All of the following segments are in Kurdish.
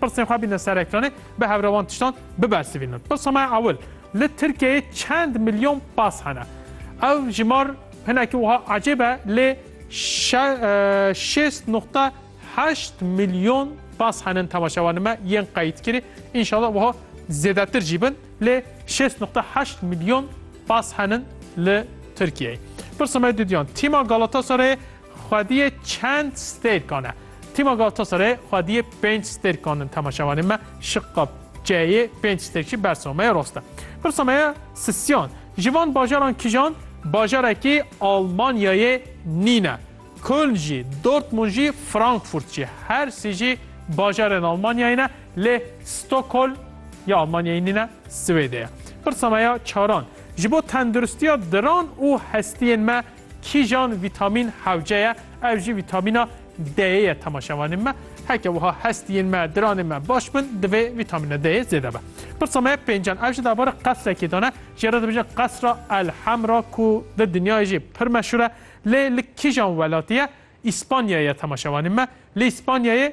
Pirsên xwe bîne ser ekranê, bi hevra wan tiştan bibersivînin. Pirsa me ya ewil, li Tirkiyeyê çend milyon pas hene? Ev jimar hinekî wiha ecêb e lê şêst nuqta heşt milyon pas henin temaşevanên me yên qeyîdkirî. Înşala wiha zêdetir jî bin lê şêst nuqta heşt milyon pas henin li Tirkiyeyê. Pirsa me dûdiyan, tîma Galatasarayê Xwediyê çend stêrkan e? Tîma Galatasarayê xwediyê pênc stêrkan in temaşevanên me şiqa ç'yê pênc stêrkî bersa me ye rast e. Pirsa me ye Sisyan ji van bajaran kijan bajarekî Almanyayê nîne? Köln jî, Dortmund jî, Frankfurt jî her sî jî bajarên Almanyayê ne lê Stockholm ya Almanyayê nîne Swêdê ye. Pirsa me ya çaran ji bo tenduristiya diran û hestiyên me Kîjan vîtamîn hewce ye? Ew jî vîtamîna D'yê ye temaşevanên me. Heke wiha hestiyên me, diranên me baş bin divê vîtamîna D'yê zêde be. Pirsa me pêncan ev ji derbarê qesrekê de ne. Jê re dibêjin qesra El Hemra ku di dinyayê jî pir meşhûr e. Lê li kîjan welatî ye? Îspanyayê ye temaşevanên me. Li Îspanyayê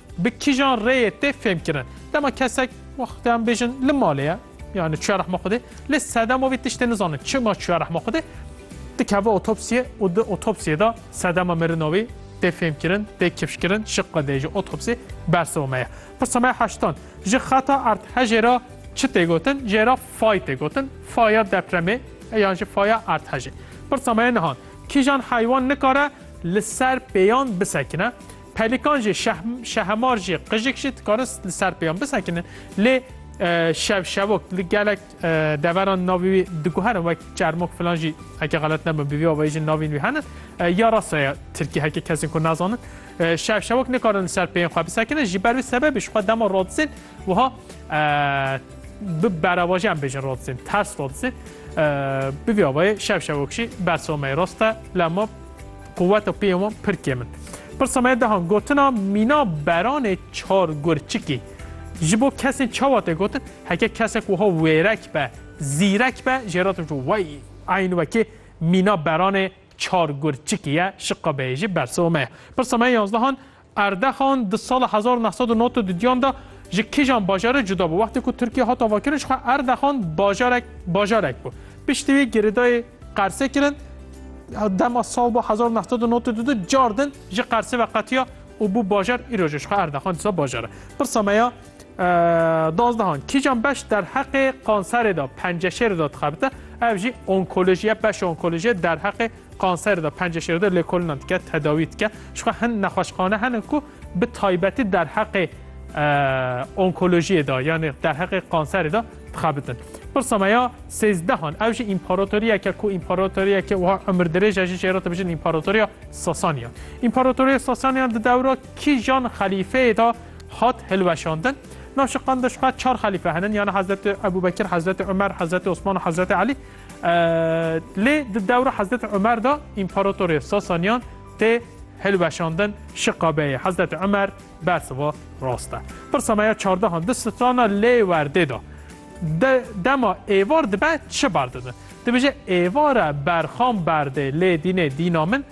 Bi kîjan rêyê tê fêmkirin? Dema kesek wext em bêjin li malê ye yani çiya rehma xwedê lê sedema vê tiştê nizanin çima çiya rehma xwedê dikeve otopsiye û di otopsiyê de sedema mirina wê tê fêmkirin tê kifşkirin şiq qedê ji otopsiyê bersiva me ye. Pirsa me heştan ji xeta erdhejê re çi tê gotin jê re fay tê gotin faya depremê yan jî faya erdhejê. Pirsa me nihan kîjan heywan nikare li ser pêyan bisekine? Pelikan jî, şehemar jî, qijik jî dikarin li ser pêyan bisekinin. Lê şev şevok li gelek deveran navê wî diguherin wek çermok filan jî heke xelet nebin bi vî avayî jî navîn wî henin. Ya rasta ya Tirkî heke kesên ku nazanin. Şev şevok nikarin li ser pêyan xwe bisekinin ji ber wî sebebê ji xwe dema radizên wiha bi berevaje em bêjin radizên ters radizê. Bi vî avayê şev şevok jî bersomeyê rast e lema Quweta pê wan pir kêm in. Pirsa me dehan gotina mîna beranê çar gur çikî. Ji bo kesên çawa tê gotin, heke kesek wiha wêrek be, zîrek be jê re dibêje wey eyn wekî mîna beranê çar gur çikî ye, şiqa beyê jî bersiva me ye. Pirsa me yanzdehan Erdexan di sala hezar û neh sed û nod di diyan de ji kîjan bajarê cuda bû? Wextê ku Tirkiye hat avakirin jixwe Erdexan bajarek bajarek bû. Piştî wî girêdayê Qersê kirin. Dema sal ba hezar û neh sed û nod û du de car din ji Qersê ve qetiya û bû bajar. Îro jî jixwe Erdexan dîsa bajar e. Pirsa me ya dazdehan kîjan beş derheqê kanserê de penceşêrê de dixebite? Ev jî onkolojî ye. Beşa onkolojî ye derheqê Kanser de pencê şêr de lêkolîna dike, tedawî dike. Jixwe hin nexweşxane hene ku bi taybetî derheqê onkolojiyê de yanê derheqê kanserê de dixebitin. Pirsa me ya sêzdehan ew jî împaratoriyeke ku împaratoriyeke wiha umrdirêje jî jê re dibijin împaratoriya Sasaniyan. Împaratoriya Sasaniyan di dewra kîjan xelîfeyê de hat hilweşandin? Navşiqan de jixwe çar xelîfe henin yani Hezreti Ebûbekir, Hezreti Umer, Hezreti Osman û Hezreti Elî. Lê di dewra Hezreti Umer de împaratorê Sasaniyan tê hilweşandin şiqabeyê Hezreti Umer bersiva rast e. Pirsa me ya çardehan di strana lê werdê de dema êvar dibe çi berdidin? Dibêje êvara berxan berdê lê dînê dîna min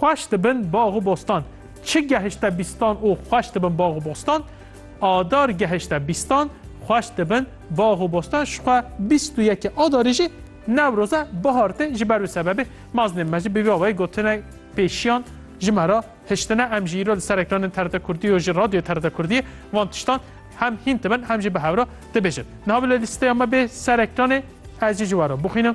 Xweş dibin bax û bostan. Çi gehişte bîstan û xweş dibin bax û bostan? Adar gehişte bîstan, xweş dibin bax û bostan. Ji xwe bîst û yekê Adarê jî Newroze, bihar tê. Ji ber wî sebebê meznên me jî bi vî awayî gotinek pêşiyan ji me re hiştine. Em jî îro li ser ekranên TRT Kurdî û ji Radyoyê TRT Kurdiyê van tiştan hem hîn dibin hem jî bi hev re dibêjin. Niha bila lîsteya me bê ser ekranê ez jî ji we re bixwînim.